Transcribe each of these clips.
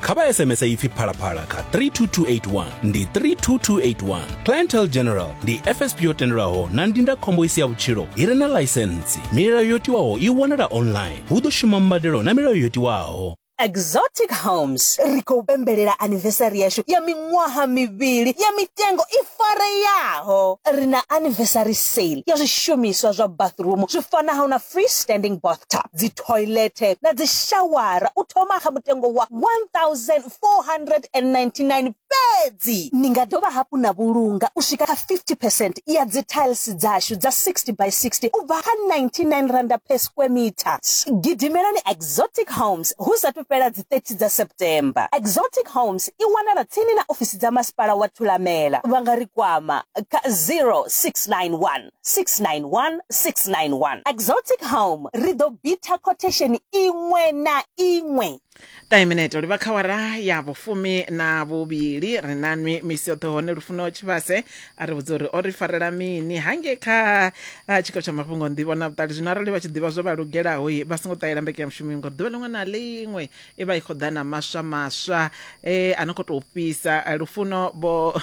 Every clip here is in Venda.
kha vha sms ipfi phalaphala kha 32281 ndi 32281 clientel general ndi fsp yo tendelwaho na ndindakhombo i si ya vhutshilo i re na ḽaisentsi milayo yo tiwaho i wanala online hu ḓo shuma mbadelo na milayo yo tiwaho exotic homes ri khou pembelela anivesari yashu ya miṅwaha mivhili ya mitengo i fareyaho ri na anivesari sale ya zwishumiswa zwa bathroom zwi fanaho na free standing bathtub dzithoilethe na dzishawara u thoma kha mutengo wa R1,499 fhedzi. Ni nga dovha hafhu na vhulunga u swika kha 50 percent ya dzithailisi dzashu dza 60 by 60 u bva kha R99 per square metre. Gidimelani Exotic Homes hu sa athu fhela dzi 30 dza September. Exotic Homes i wanala tsini na ofisi dza Masipala wa Thulamela. Vha nga ri kwama kha 0691. 691 691 exotic home ri ḓo bitha quotation iṅwe na iṅwe taiminete livha kha wara ya vhufumi na vhuvhili ri na nwi misi yoṱhe hone lufuno tshivhase a ri vhudza uri o ri farela mini hange kha ah, tshiko tsha mafhungo nḓivho na vhuṱali zwino arali vha tshi ḓivha zwo vha lugelaho i vha songo ṱahela mbeke ya mushumi ngori ḓuvha ḽiṅwe na ḽiṅwe i vha i khou ḓa na maswa maswa e a no khou tou fhisa Eh, lufuno vho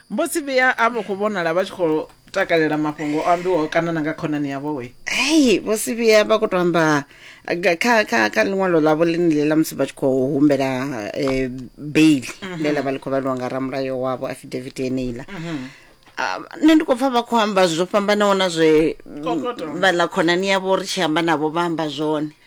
mbo si vhuya a vho khou vhonala vha tshi khou takalela mafhungo o ambiwaho kana na nga khonani yavho we hei vho si vhuya vha khou to amba ga- kha kha kha ḽiṅwalo ḽavho ḽine ḽe ḽa musi vha tshi khou humbela um bail ḽe ḽa vha ḽi khou vhaliwa nga ramulayo wavho affidavit yeneiḽa Ah, nṋe ndi khou pfa vha khou amba zwo fhambanaho na zwe Kokoto. vhaḽa khonani yavho ri tshi amba navho vha amba zwone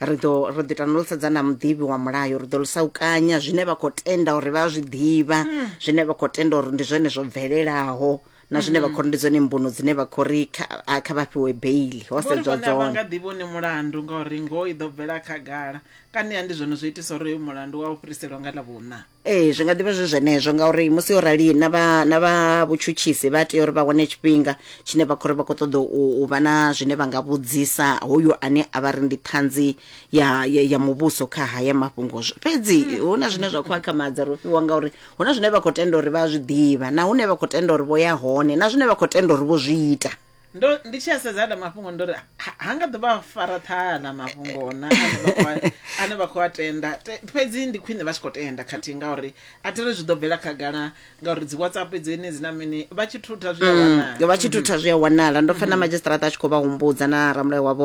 ri ḓo ro ḓi tana lu sedza na muḓivhi wa mulayo ri ḓo lusa u kanya zwine vha khou tenda uri vha zwi ḓivha hmm. zwine vha khou tenda uri ndi zwone zwo bvelelaho na zwine vha hmm. khori ndi dzone mbuno dzine vha khori kha vha fhiwe beili ho sedzwa dzone nga ḓivhi une mulandu ngauri ngoho i ḓo bvela khagala kani ya ndi zwone zwo itisa uri uyu mulandu wa u fhiriselwa nga ḽa vhuna ee zwi nga ḓivha zwi zwenezwo ngauri musi yo rali na vha na vha vhutshutshisi vha tea uri vha wane tshifhinga tshine vha khou ri vha khou ṱoḓa u u vha na zwine vha nga vhudzisa hoyo ane a vha ri ndi ṱhanzi ya ya, ya muvhuso kha haya mafhungo Zw- fhedzi hu na zwine zwa khou akhamadza ro fhiwa ngauri hu na zwine vha khou tenda uri vha a zwi ḓivha na hune vha khou tenda uri vho ya hone na zwine vha khou tenda uri vho zwi ita ndo ndi tshi a sedza aḽa mafhungo ndo ri ha ha nga ḓo vha fara ṱhaha aḽa mafhungo na ane vha khou a- ane vha khou a tenda Te- fhedzi ndi khwine vha tshi khou tenda khathihi ngauri a thi ri zwi ḓo bvela khagala ngauri dzi whatsapp dzeni dzi na mini vha tshi thutha zwi a wanala vha tshi thutha zwi a wanala ndo pfa na madzhisiṱaraṱa a tshi khou vha humbudza na ramulayo wavho